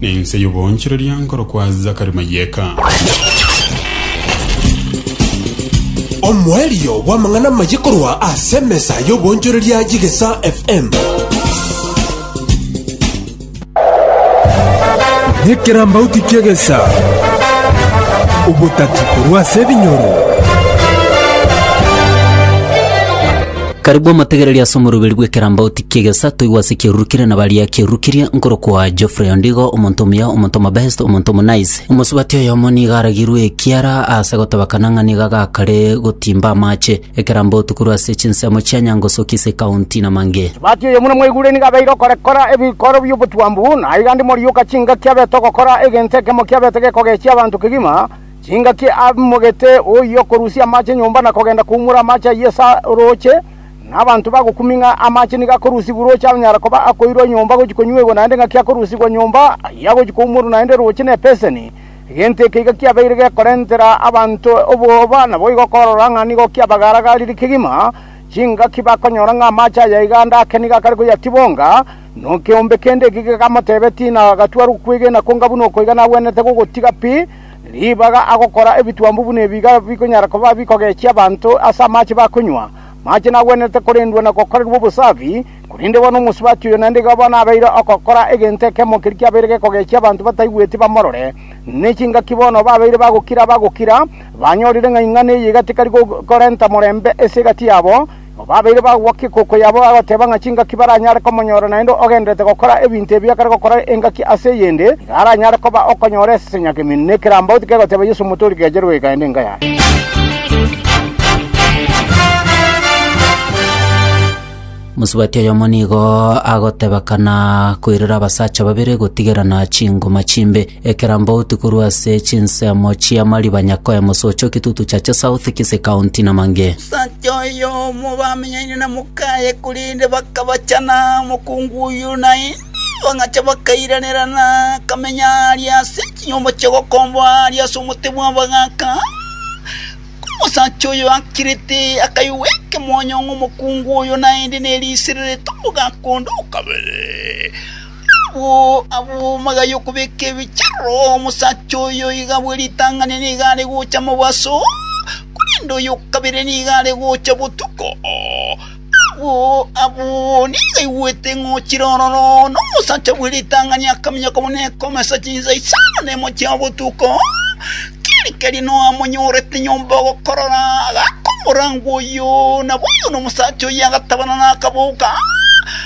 Nense y'oboonchoreria nkorokwa Zakari Mayeka. Omoerio bw'amang'ana amaye korwa ase emesa y'obonchoreria y'Egesa FM. Nekerambauti ki'egesa, obotati korwa ase ebinyoro. Karibu omotegereria ase omoruberi bw'ekerambauti ki'egesato igwa ase eki'erurukire na baria ki'erurukirie, nkorokwa Geoffrey Ondigo, omonto omuya, omonto omobest, omonto omonice. Omosubati oyomo nigo aragirwe ekiara ase gotebakana ng'a nigo agakare gotimba amache, ekerambauti korwa ase chinsemo chia Nyangosoki ase ekaunti Namange. Osubati oyomo nomweguria nigo abeire okorekora ebikoro bi'obotwambu, na aigande moriuka chingaki abete ogokora egento ekemo kiabete gekogechia abanto kegima, Chingaki amogete oyio okorusia amache nyomba na kogenda koumora amache ayio ase orooche, na abanto bagokumia ng'a amache nigo akorusigwa orooche anyare koba akoirwa nyomba gochia konyuegwa naende ng'aki akorusigwa nyomba ayio agochia koumorwa naende rooche nebeseni. Egento eke iga kiabeire gekorentera abanto obwoba naboigo okorora ng'a nigo kiabagaaragarire kegima chingaki bakonyora ng'a amache aya iga ande ake nigo akare koyatibonga, na ekeombe kende ekio gekamotebetia, Inagatuarwa okwegena konga buna okoiga nagwenerete gogotiga pi, ribaga agokora ebitwambu buna ebiga bikonyara koba bikogechia abanto ase amache bakonywa. Amache nagwenerete korendwa na gokorerwa obosafi, korende bono omosubati oyo naende iga bono abeire ogokora egento ekemo keria kiabeire gekogechia abanto bataigweti bamorore. Ne chingaki bono babeire bagokira, bagokira, banyorire ng'a ing'ana eye iga tekari korenta morembe ase egati yabo, Babeire bagokwa egoko yabo bagoteba ng'a chingaki baranyare komonyora naende ogendererete gokora ebinto ebio ekare gokora engaki ase eyende, iga aranyare koba okonyora esesenia kemino ne ekerambauti kegoteba Yeso Omotoori keche rweka ende enka yaye. Mosubati oyomo nigo agotebekana koirera abasacha babere gotigerana chingoma chimbe. Ekerambe outi korwa ase chinsemo chi'amariba nyakoe mosoche o Kitutu Chache South, Kisii County, na Mange. Omosacha oyomo bamenyaine na mokaye, korende bakabachana omokungu oyio na inse, bagacha bakairanerana, akamenya aaria ase chinyomba chia obokomba aaria ase omote bw'abagaaka. Ekero omosacha oyo akirete, akaigwa ekemonyo ng'a omokungu oyo naende neriisire rete omogaaka onde o kabere. Agwo agwo magega y'okobeka ebicharo, omosacha oyo iga bwe ritang'ani nigo are gocha mobaso, korende oyo o kabere nigo are gocha botuko. Agwo agwo nigo aigwete ng'a ochire ororo, na omosacha bwe ritang'ani akaminyoka buna ekomesa chinsa isano na emo chia botuko, keri keri noamonyorete nyomba ogokorora, agakomorangwa oyo. Nabo oyo na omosacha oyio agatabana na akaboka.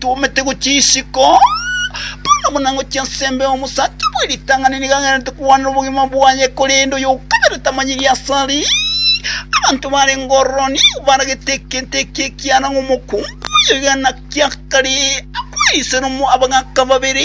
Twomete gochia isiko, bono buna ngochia ensembe y'omosacha bwe ritang'ani nigo agenderete kogwanera obogima bwaye, korende oy'okabere tamanyiri aase are. Abanto barenge ororo nigo baragete egento ekia ekiara ng'a omokungu oyo oigana kiakare akwe erisera abagaaka babere.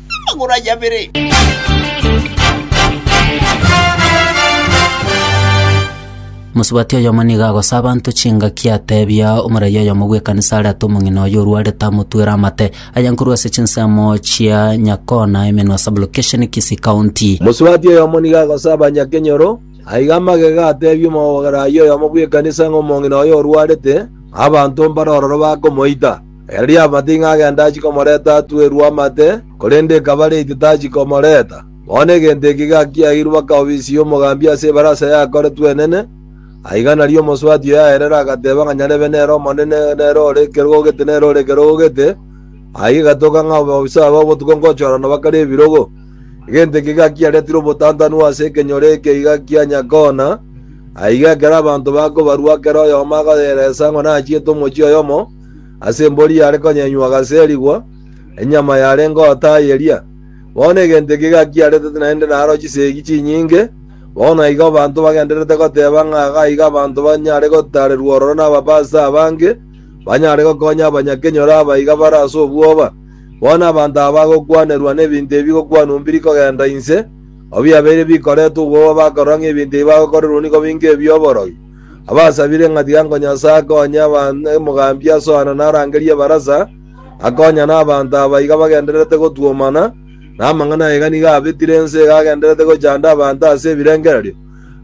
amagoro aye abere. Mosubati oyomo nigo agosa abanto chingaki atebia omoraia oyomo bw'ekanisa are ata omong'ina oye orwarete amotwere amate aye nkorwa ase chinsemo chia Nyakona emenwa sublocation Kisii County. Mosubati oyomo nigo agosa abanyakenyoro aige amagega atebia omoraia oyomo bw'ekanisa ng'a omong'ina oye orwarete, abanto mbare ororo bakomoita. Erio amating'a agenda achia komoreta atwerwe amate, korende ekaba late tachia komoreta. Bono egento eke gakiairwe bakaobisia omogambi ase ebarasa yakoretwe enene, aiga nario omosubati oyo aerera agateba ng'a nyarebe nere omonene nere ore ekerogo gete nere ore ekerogo gete, aiga egatoka ng'a abaofisa aba obotuko ngochorana bakare ebirogo. Egento eke gakiaretire obotantanu ase ekenyoro eke iga kia Nyakona, aiga ekero abanto bakobarua kera oyomo akoyeresa ng'a nachiete omochie oyomo, ase embori yare konyenywa agaserigwa, enyama yarenge otayeria. Bono egento eke gakiaretete naende naro chisegi chinyinge, bono naigo abanto bagendererete goteba ng'a iga aiga abanto banyare gotaarerwa ororo nababaso abange, banyare gokonya abanyakenyoro aba iga bare ase obwoba. Bono abanto aba bagokwanerwa nebinto ebi bigokwanwa mbiri kogenda inse, abiabeire bikoretwe obwoba bakorora ng'a ebinto ebi bagokorerwa nigo binga ebi'oborogi. abasabire ng'a tiga nko Nyasae akonye omogambi asoane na arangerie ebarasa, akonye nabanto aba iga bagendererete gotwomana, na amang'ana aye iga nigo abetire ense iga agendererete gochanda abanto ase ebirengererio.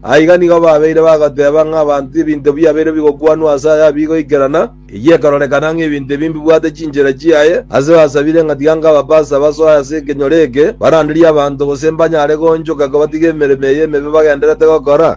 Aiga nigo babeire bagoteeba ng'a abanto ebinto biabeire bigokwanwa ase aya bigoikerana, Eyio ekarorekana ng'a ebinto ebi mbibwate chinchera chiaye, ase basabire ng'a tiga nkabapase abasoe ase ekenyoro eke, baranderie abanto, gose mbanyare goonchoka kobatiga emeremo eye emebe bagendererete gokora.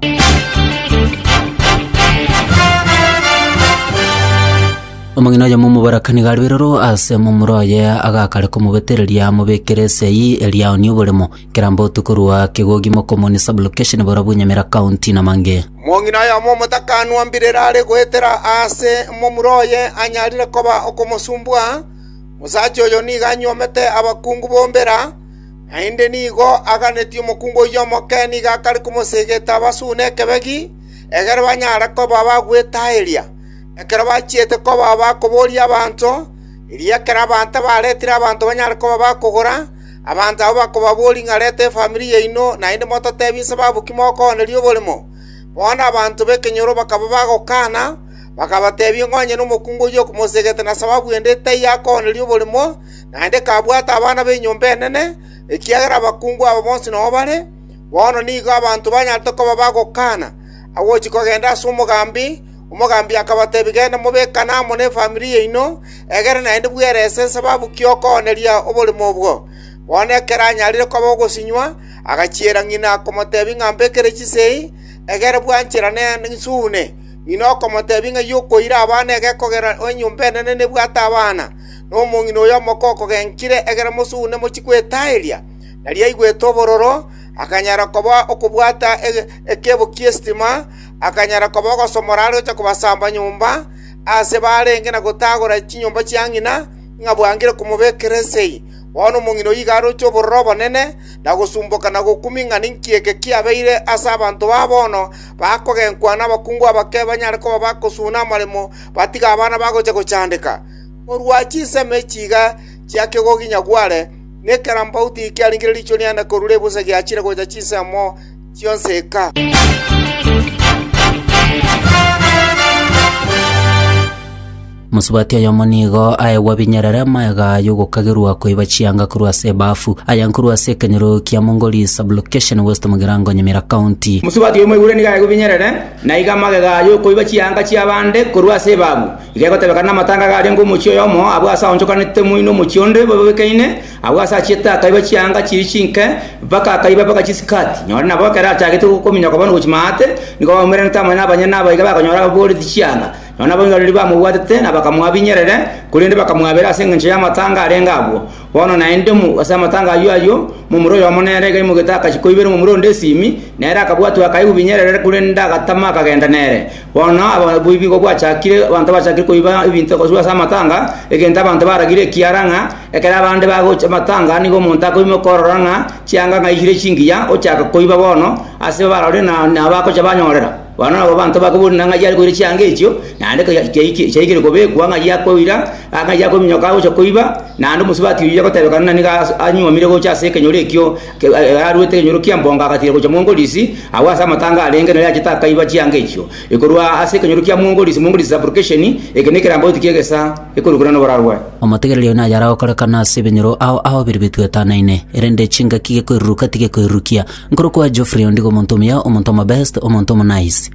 Omong'ina oyomo omoboraka nigo arebe roro ase momura oye, agakare komobetereria amobekere esegi eria aonie oboremo, kera mbotu korwa kegogi mokomonia sublocation Borobunyo Nyamira County na Mange. Omong'ina oyomo omotakanwa mbirere are goetera aase momura oye anyarire koba okomosumbua. Omosacha oyo nigo anyuomete abakungu bo mbera, naende nigo aganetie omokungu oyio omoke nigo akare komosegeta abasune ekebegi, egere banyare koba bagwetaaeria. Ekero bachiete koba bakoboria abanto, erio ekero abanto abaretire abanto banyare koba bakogora, Abanto abwo bakoba boring'arete efamiri yaino, naende mototeebie inse baabo ki mokooneria oborimo. Bono abanto b'ekenyoro bakaba bagokana, bakabateebia ng'a onye nomokungu oyio okomosegete na sababu ende taiyo akooneria oborimo, naende kabwate abana b'enyomba enene, ekiagera abakungu aba bonsi noyo bare. Bono nigo abanto banyarete koba bagokana agochia kogenda ase omogambi, Omogambi akabatebia, Genda mobekane amo nefamiri yaino, egere naende bwerese esababu ki okooneria oborimo obwo. Bono ekero anyarire koba ogosinywa, agachiera ng'ina komotebia ng'a mbekere chisei, egere bwanchera nsuune. Ng'ina okomotebia ng'a y'okoira abana egekogera enyomba enene nebwate abana, na omong'ina oyo omoko okogenkire, egere mosuune mochie kwetaeria. Nari aigwete obororo, akanyara koba okobwata ekeebo ki'esitima, akanyara koba ogosomora are gocha kobasamba nyomba aase baarenge na gotaagora chinyomba chia ng'ina, ng'a bwangire komobekera esegi. Bono omong'ina oyio iga aroche obororo obonene, na gosumboka na gokumi ng'a ninki eke kiabeire ase abanto ba bono, bakogenkwa nabakungu abake banyare koba bagosuna amaremo batige abana bagocha gochandeka. Korwa chinsemo echi iga chia kegoginyagware, nekerambauti kiaringire riichwe riane korwa ribusa giachire gocha chinsemo, chionsi eka. Mosubati oyomo nigo aegwa binyerere amagega y'ogokagerwa koiba chianga korwa ase ebafu, aya nkorwa ase ekenyoro kia Mongoli Sub-location West Mugirango Nyamira County. Mosubati oyomo oigure nigo aegwa binyerere, na iga amagega y'okoiba chianga chi'abande korwa ase ebafu. Iga egotebekana namatanga garia ngomochie oyomo abwo ase aonchokanete moino omochie onde bobekeine, Agwo ase achiete akaiba chianga chiria chinke, mpaka akaiba mpaka chisikati. Nyore nabo ekero achagete gokominyoka bono gochia maate, nigo bamomiranetie amo nabanyene na abaiga bakonyora ababooreti chianga. Nonya naboiganereria bamobwatete na bakamoabinyerere, korende bakamwabera ase engencho y'amatanga arenge agwo. Bono naende mo ase amatanga ayio ayio, momura oyomo nere iga aimoigete agachia koibera momura onde esimi, nere akabwatwa akaigwa binyerere, korende agatama akagenda nere. Bono oboibi bwachakire, abanto bachakire koiba ebinto koswa ase amatanga, egento abanto baragire ekiara ng'a ekero abande bagocha amatanga nigo omonto akoima okorora ng'a chianga ng'a aiyire chingiya, ochaka koiba bono ase barore na nabagocha banyorera. Bono nabo abanto bakobuna ng'a yare koira chianga echio, naende koya chiaike chiaikire kobekwa ng'a ayia koira, ang'ayia kominyoka agocha koiba, naende omosubati oyio agotebekana nigo as anywomire gocha ase ekenyoro ekio, Ekero aruete ekenyoro kia mbonga agatiira gochia mwongorisi, agwo ase amatanga arenge nere achete akaiba chianga echio. Ekorwa ase ekenyoro kia mwongorisi, mwongorisi subrogation, eke nekerambe goti ki'egesa, ekorokwa nere noboraro bwaye. Omotegereri oyo nayare agokorekana ase ebinyoro ao aobire bituetanaine, erende chingaki gekoiruruka tigekoirurukia. Nkorokwa Geoffrey ondigo omonto omuya, omonto omobest, omonto omonice.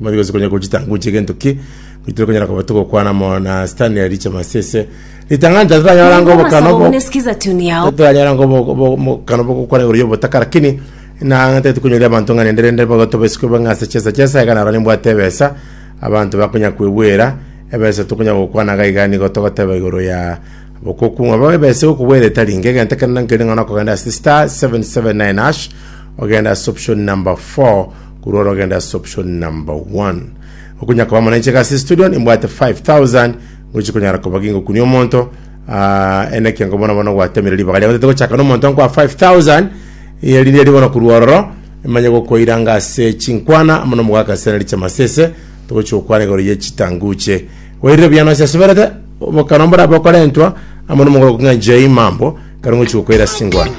Mbono tibaisa konya gochitanga gocha egento ki, goitire konyara koba togokwana amo na Sitani ya riche masese. Ritang'ani tari tanyora Mungu ngobo kana obo. abasabune sikiza tuni yao Tanyora ngobo obo mokano bogokwana igoro y'obotaka lakini na tari tukonyoria abanto ng'a rende rende bogoto baisiko bang'e ase chesa chesa iga naro nimbwate ebesa abanto bakonya kwebwera ebesa tokonya gokwana iga iga nigo togoteba igoro ya bokoku ng'a bo ebesa egokobwera etari inge egento kende nkeri ng'a nokogenda ase star 779 hash ogenda ase option number 4 Korwa orogendo ase option number one. Okonya koba mwananchi iga ase studio nimbwate 5000 ngochi konyara koba gingokunia omonto ah, ene ekiango bono bono gwatemire ribaga riago tete gochaka na omonto nkwa 5000 eri riri bono korwa ororo emanye gokoiranga ase chinkwana amo nomogaka ase nari chamasese togochi gokwana igoro ye chitanguche wairire biyano ase asuberete bokano mbora bokorentwa amo nomogoro kong'a njei mambo kare ngochi gokoira ase chingwana